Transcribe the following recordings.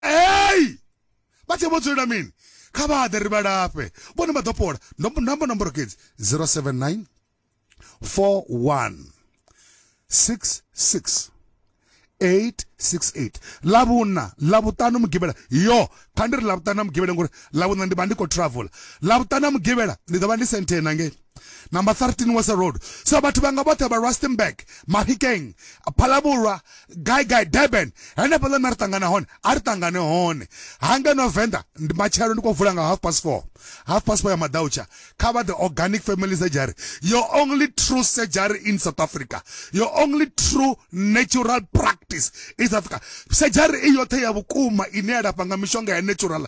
ei vha tshee vho dzulela mini kha vha ḓe ri vha lafhe vhone vha ḓo fhola namba nomboro kedzi 079 41 66 868 lavhuna lavhuṱanu mugivhela yo kha ndi ri lavhuṱanu na mugivhela ngori lavhuna ndi vha ndi khou travel lavhuṱanu na mugivhela ndi ḓo vha ndi senthe nangei number 13 wasa road so vhathu vhanga vhoṱhe vha rustenburg mafikeng phalabulwa gai gai durban henefho ḽone ri ṱangana hone a ri ṱangane hone hange no venḓa ndi matshelo ndi khou vula nga half past four half past four ya madautsha kha vha the organic family surgery your only true surgery in south africa your only true natural practice in south africa surgery i yoṱhe ya vhukuma ine ya lafha nga mishonga ya natural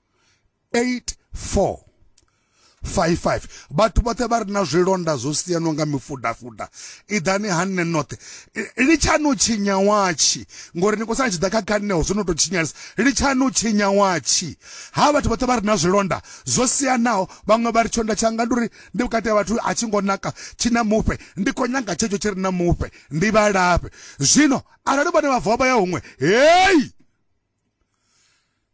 84 55 vhathu vhoṱhe vha re na zwilonda zwo siyanwa nga mifudafuda iḓani ha nṋe noṱhe litshani u tshinya watshi ngori ni khou sala tshi ḓa kha khanneho zwo no tou tshinyalisa litshani u tshinya watshi ha vhathu vhoṱhe vha re na zwilonda zwo siyanaho vhaṅwe vha ri tshonda tshanga ndi uri ndi vhukati ha vhathu a tshi ngo naka tshi na mufhe ndi khou nyanga tshetsho tshi re na mufhe ndi vhalafhe zwino arali vhone vha vuwa vha ya huṅwe heyi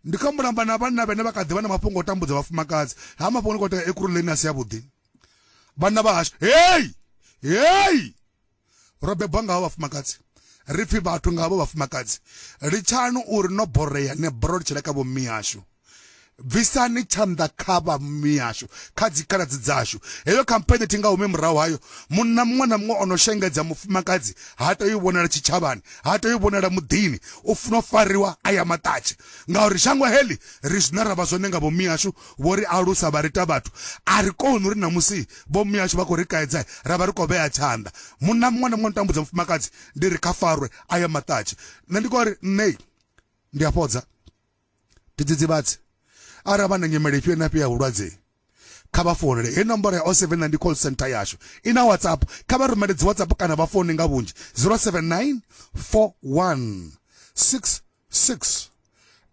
ndi kha mulamba na vhanna vhene vha kha ḓi vha na mafhungo o tambudza vhafumakadzi ha mafhungo ni khou tea ekuruleni a si yavhuḓi vhanna vha hashu hei hei ro bebwa nga havho vhafumakadzi ri pfhi vhathu nga havho vhafumakadzi litshani uri no boreya ne bora ri tshile kha vhommi yashu Bvisani tshanḓa kha vha mihashu, kha dzikhaladzi dzashu. Heyo khampheni thi nga humi murahu hayo. Munna muṅwe na muṅwe o no shengedza mufumakadzi ha tei u vhonala tshitshavhani, ha tei u vhonala muḓini. U funa u fariwa a ya maṱatshe. Ngauri shango heḽi, ri zwine ra vha zwone nga vho mihashu, vho ri alusa vha ri ita vhathu. A ri koni uri ṋamusi vho mihashu vha khou ri kaidza ra vha ri khou vhea tshanḓa. Munna muṅwe na muṅwe o no tambudza mufumakadzi ndi ri kha farwe a ya maṱatshe. Nṋe ndi khou ri, Nṋe ndi a fhodza. ndi dzidzivhadzi arali vha na nyimele ifhio na ifhio ya vhulwadze kha vha founele he nomboro ya 079 ndi call center yashu i na whatsapp kha vha rumele dzi whatsapp kana vha foune nga vhunzhi 079 41 66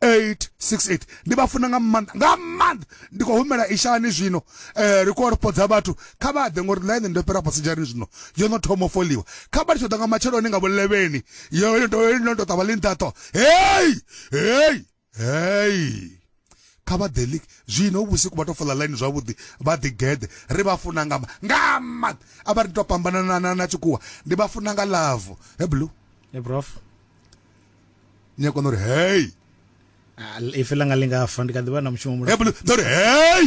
868 ndi vha funa nga maanḓa nga maanḓa ndi khou humela ishani zwino um ri khou ripodza vhathu kha vha ḓe ngori ḽaine ndo fhira pasijani zwino yo no thoma foliwa kha vha litsho ḓa nga matsheloni nga vhulevheni yo no tou ṱavha ḽi nṱaṱo hei hey hey kha vha ḓe league zwino vhusiku vha to fola line zwavhuḓi vha ḓi geḓe ri vha funa nga nga ma a vha ri to fhambana na na na tshikuwa ndi vha funa nga love he blue he prof ni a kona uri hey ah, ife langa lingafa ndi kha ḓi vha na mushumo mulo he blue ḓo ri hey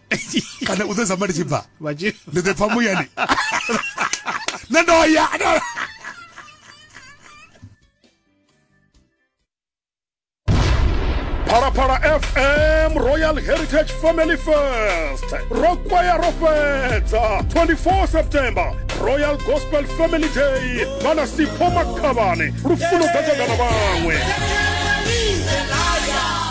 kana u ḓo zamba ndi tshi bva ndi ḓo pfa muyani nṋe ndo ya phalaphala fm royal heritage family first ro kwaya ro fhedza 24 september royal gospel family day vhana sipho makhavhane lufuno ḓadzagana vhaṅwe